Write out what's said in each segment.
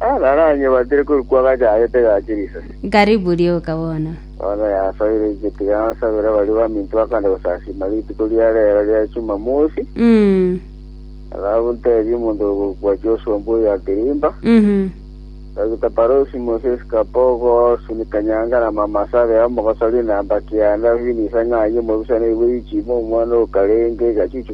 Agaranye batire korikwa gachagete gache risasi. Karibu rioka bono. Bono yasoire inche tiga nsabere baria baminto bakande gosasima rituko ria rero ria Chumamosi. Mm. Nabu ntebie omonto oyo gokwa Joshua mbwa oyo akirimba. Mhm. Dr. Parosi Moses Kapogo Suni Kanyanga na Mama Sabe amo mogosaria enamba kianda Vinisa Ng'ayi omobisa na Iwe Ichimo omwana okarenge gachuchu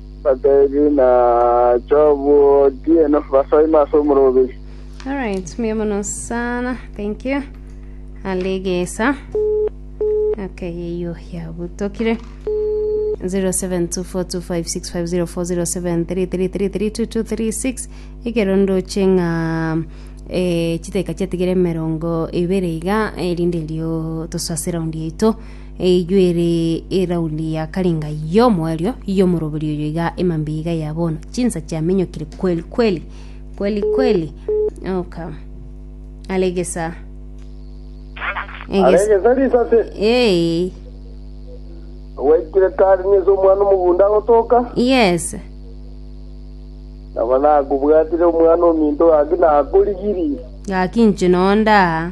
Batebi, Nacha obwo otieno, basa ime ase omoroberi. Alright, mbuya mono sana. Thank you. Alegesa. Okay, yeyo yabutokire. 072425650733332236 ekerondo cheng'a eh, chiteka chiatigere emerongo ibere iga erinde erio tosase raundi yaito Eyio ere erauni ya karenga y'omoerio y'omorobori oyo iga emambia iga ya bono chinsa chiamenyokire kweli kweli kweli kweli oka aregesa egesa aregesa risase ee gwaikire kare nise omwana omogunda agotoka yes nabo nakobwatire omwana ominto gaki nakorigiri gaki inche nonda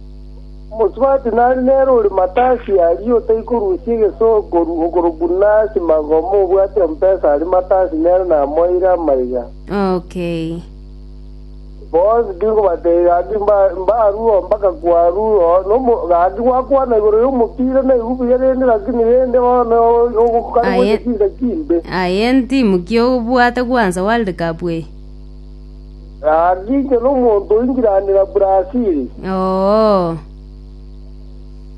Omosubati nare nere ore matasi aria otaikorusia egesonko okorokwa Nancy Magoma obwate empesa aria matasi nere namoeire amaiga. Okay. Bonsi tinkobateebia gaki mba- mbarue mpaka kwarue oo nomo gaki gwakwana igoro y'omopira naigwe buya rende lakini rende bono ogokana Aye. gocha chinsa chimbe. Aye ntimu ki obwate gwansa World Cup eye? Gaki inche nomonto oingiranera Brazili, Oo.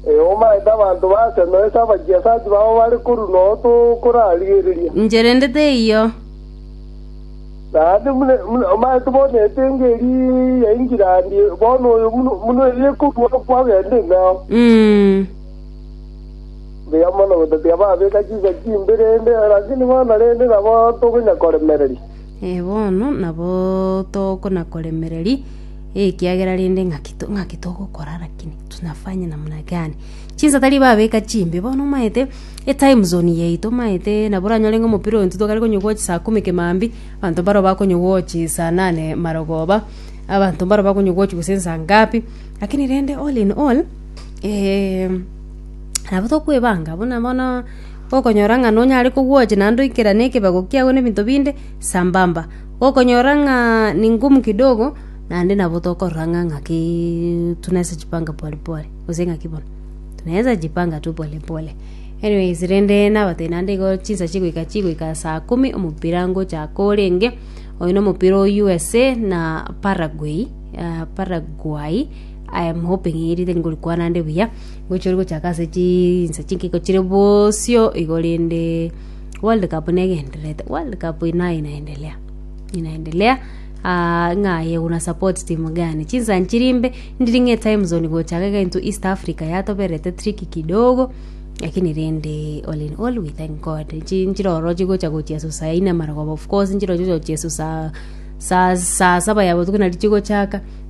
eomaete abanto baase noise abagiasachi babo bare korwa noo tokorarigereria. Inche rende teiyo. Naende mune- mune- omaete bono etenge eri yaingiranie bono oyo buna buna eri ekorua kwagenda ing'ao. Mm. Mbuya mono gotatiga babeka chinsa chimbere rende, lakini bono rende nabo tokonyakoremereria. Ee, bono nabo tokona-koremereria, ekiagera rende ng'aki to- ng'aki togokora rakini tunafanye namna gani? Chinsa tari babeka chimbe, bono omaete etime zone yaito omaete nabo oranyore ng'a omopira oyo intwe twakare konya gocha saa kumi kemambia, abanto mbaro bakonya gochi saa nane marogoba, abanto mbaro bakonya gochi gose nsa ngapi, rakini rende all in all nabo tokoebanga buna bono. gokonyora ng'a nonyare kogwocha naende oikerane ekebago kiago na ebinto binde sambamba. Gokonyora ng'a ni ngumu kidogo, naende nabo tokorora ng'a ng'aki tunaweza jipanga pole pole gose ng'aki bono tunaweza jipanga tu pole pole. Anyways rende nabatebia naende igo chinsa chigoika chigoika saa kumi omopira ngochaka orenge, oyo na omopira o USA na Paraguay Paraguay I am hoping erinde ngorikwana ande buya. gochia ore gochaka ase chinsa chinkiko chire bosio igo rende world cup negendererete world cup nayo inaendelea inaendelea aa ng'a aye una support timu gani chinsa nchiri mbe ndiri ng'a etime zone gochaka iga intwe east africa yatobererete tricky kidogo lakini rende all in all we thank God nchi- nchire oro chigocha gochia susa yaine amarogoba of course nchire ochigochia susa saa saa saba ya botuko nari chigochaka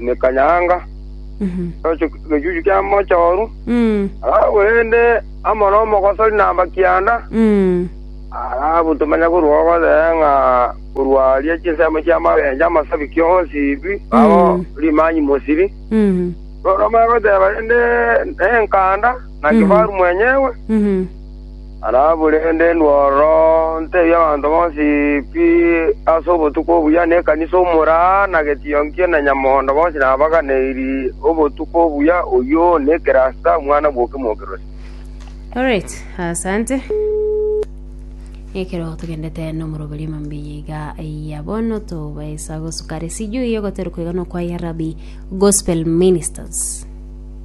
emekanyanga, egechuchu kia mochooru, korende amo nomogosori na amakianda, arabutwe manya korwa ogosee ng'a korwa aria chinsemo chi'amagencho amasabiki onsi bi ao rimanyi mosiri. Korende omanye goteba rende nenkanda na kifaru mwenyewe. Araburende ndworoonte ebi'abanto bonsi pi ase obotuko obuya, na ekanisa omoraa, na getionkia, na nyamondo bonsi nabaganeiri obotuko obuya, oyio nekerasta omwana bw'okemwokeroria. Alright, asante. Ekero togendete nomoroberio mambia iga ya bono tobaisa gosukare sijui yogoterwa koigana kwa ya Rabi Gospel Ministers.